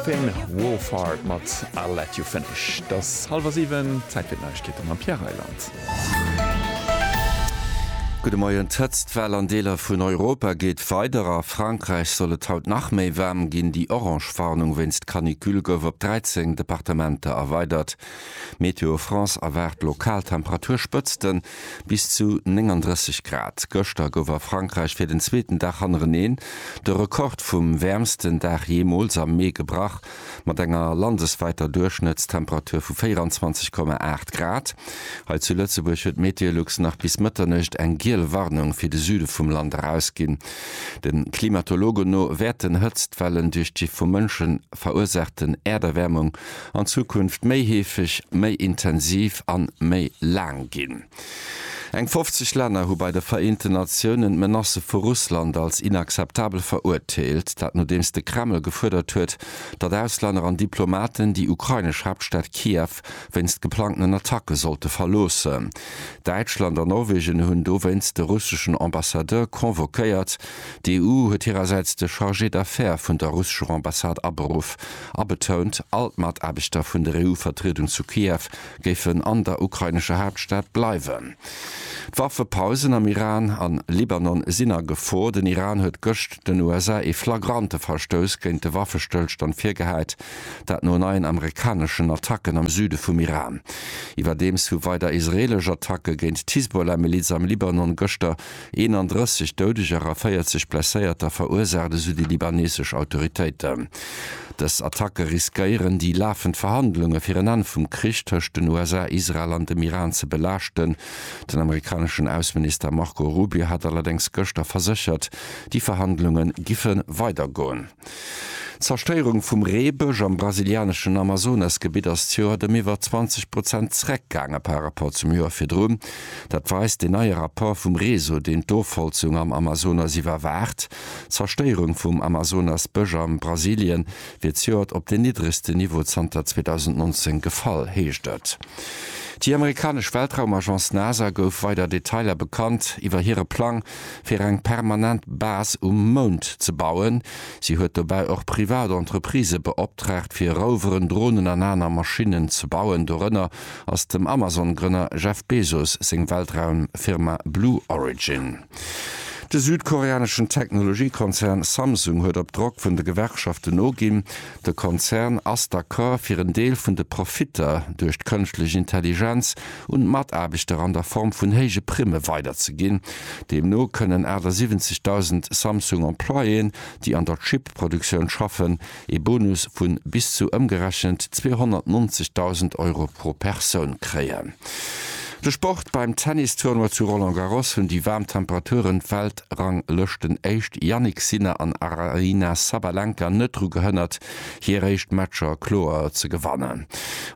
Finn Wolfhard mat I'll Let You Finish. Et ass hallwer siwen, Zäit fir d'Neiegkeete mam Pierre Reyland. Gudde Moien, D'Hëtztwell an Deeler vun Europa geet weider. A Frankräich soll et haut nach méi waarm ginn. Déi orange Warnung wéinst Canicule gouf op 13 Departementer erweidert. Météo France erwaart lokal Temperaturspëtzten, bis zu 39 Grad. Gëschter gouf a Frankräich fir den zweeten Dag hannereneen de Rekord vum wäermsten Dag jeemools am Mee gebrach, mat enger landeswäiter Duerchschnëttstemperatur vu 24,8 Grad. Hei zu Lëtzebuerg huet Meteolux nach bis Mëtternuecht eng giel Warnung fir de Süde vum Land erausginn. De Klimatologen no wäerten Hëtztwellen duerch d'Gi vu Mënschen, verursaachten Äerderwärmung an Zukunft méi heefeg, méi intensiv an méi laang ginn. Eng 50 Länner hu bei de Vereenten Natiounen d'Menacë vu Russland als inakzeptabel verurteelt, dat nodeems de Kreml gefuerdert huet, datt Auslänner an Diplomaten déi ukrainesch Haaptstad Kiew wéinst geplangten Attacke sollte verloossen. Däitschland an Norwegen hunn dowéinst de russeschen Ambassadeur convoquéiert. D'EU huet hirersäits de Chargé d'affaires vun der russescher Ambassade aberuff a betount, all d'Mataarbechter vun der EU-Vertriedung zu Kiew géifen an der ukrainescher Haaptstad bleiwen. D'Waffepausen am Iran an Libanon sinn a Gefor. Den Iran huet gëscht den USA ee flagrante Verstouss géint de Waffestëllstand virgehäit, dat no neien amerikaneschen Attacken am Süde vum Iran. Iwwerdeems hu weider israeelesch Attacke géint d'Hisbollah-Miliz am Libanon gëschter 31 Doudeger a 40 Blesséierter verursaacht, esou déi libanesesch Autoritéiten. Dës Attacke riskéieren, déi lafend Verhandlunge fir en Enn vum Krich tëscht den USA, Israel an dem Iran ze belaaschten. Den amerikaneschen Ausseminister Marco Rubio hat allerdéngs gëschter verséchert, déi Verhandlunge giffe weidergoen. D'Zerstéierung vum Reebësch am brasilianeschen Amazonasgebitt ass d'Joert ëm iwwer 20 Prozent zeréckgaange par rapport zum Joer virdrun. Dat weist deen neie Rapport vum Reso, deen d'Ofholzung am Amazonas iwwerwaacht. D'Zerstéierung vum Amazonasbësch a Brasilie wier zejoert op den niddregsten Niveau zanter 2019 gefall, heescht et. Déi amerikanesch Weltraumagence NASA gouf weider Detailer bekannt iwwer hire Plang, fir eng permanent Base um Mound ze bauen. Si huet dobäi och privat Entreprisë beoptraagt, fir Roveren, Dronen an aner Maschinnen ze bauen. Dorënner ass dem Amazon-Grënner Jeff Bezos seng Weltraumfirma Blue Origin. De südkoreaneschen Technologiekonzern Samsung huet op Drock vun de Gewerkschaften noginn, De Konzern ass d'accord fir en Deel vun de Profitter duerch d'kënschtlech Intelligenz un d'Mataarbechter an der Form vun héije Primme weiderzeginn. Deemno kënnen 78.000 Samsung Employéen, déi an der Chip-Produktioun schaffen, ee Bonus vu bis zu ëmgerechent 290.000 Euro pro Persoun kréien. De Sport, Beim Tennis-Tournoi zu Roland Garros hunn déi waarm Temperaturen d'Welt Weltranglëschten Éischt Jannik Sinner an Aryna Sabalenka net dru gehënnert, hir éischt Matcher kloer ze gewannen.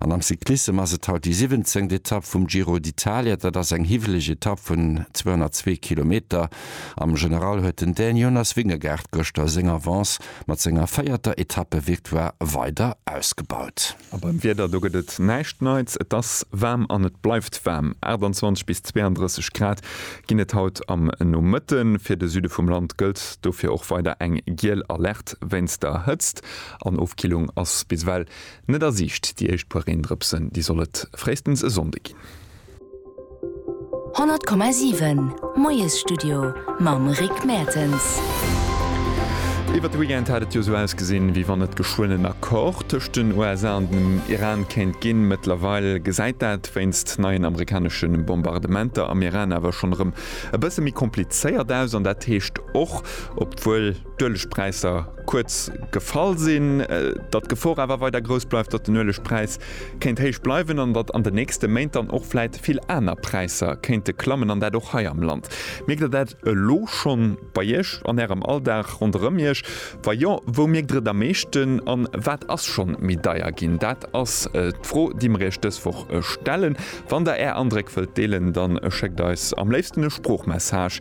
An am Cyclissem ass et haut déi siwwenzéngt Etapp vum Giro d'Italia. Dat ass eng hiwweleg Etapp vun 202 Kilometer. Am General huet den Dän Jonas Vingegaard gëschter seng Avance mat senger véierter Etappevictoire weider ausgebaut. A beim Wieder, do gëtt et näischt Neits. Et ass waarm an et bleift waarm. 28 bis 32 Grad ginn et haut am Nomëtte. Fir de Süde vum Land gëllt dofir och weider eng giel Alerte wéinst der Hëtzt. An Ofkillung ass bis ewell net a Siicht. Déi éischt puer Reendrëpsen, déi soll et fréistens e Sonnde ginn. 100,7 Moiesstudio mam Rick Mertens. Iwwert de Weekend hat et jo esou ausgesinn, wéi wann et geschwënn en Accord tëscht den USA an dem Iran kéint ginn. Mëttlerweil gesäit dat wéinst neien amerikanesche Bombardementer am Iran awer schonn erëm e bësse méi komplizéiert aus. An dat heescht och, obwuel, d'Uelegpräisser kuerz gefall sinn, datt d'Gefor awer weider grouss bleift, datt den Uelegpräis kéint héich bleiwen an datt an den nächste Méint dann och vläit vill aner Präisser kéinte klammen an dat och hei am Land. Mierkt Der dat elo scho bei Iech an Ärem Alldag ronderëm Iech? Wa jo, wou mierkt Der et am meeschten an wat ass scho méi deier ginn? Dat ass d'Fro, déi mer Iech dës Woch stellen. Wann Der Är Andréck wëllt deelen, da schéckt eis am léifsten e Sproochmessage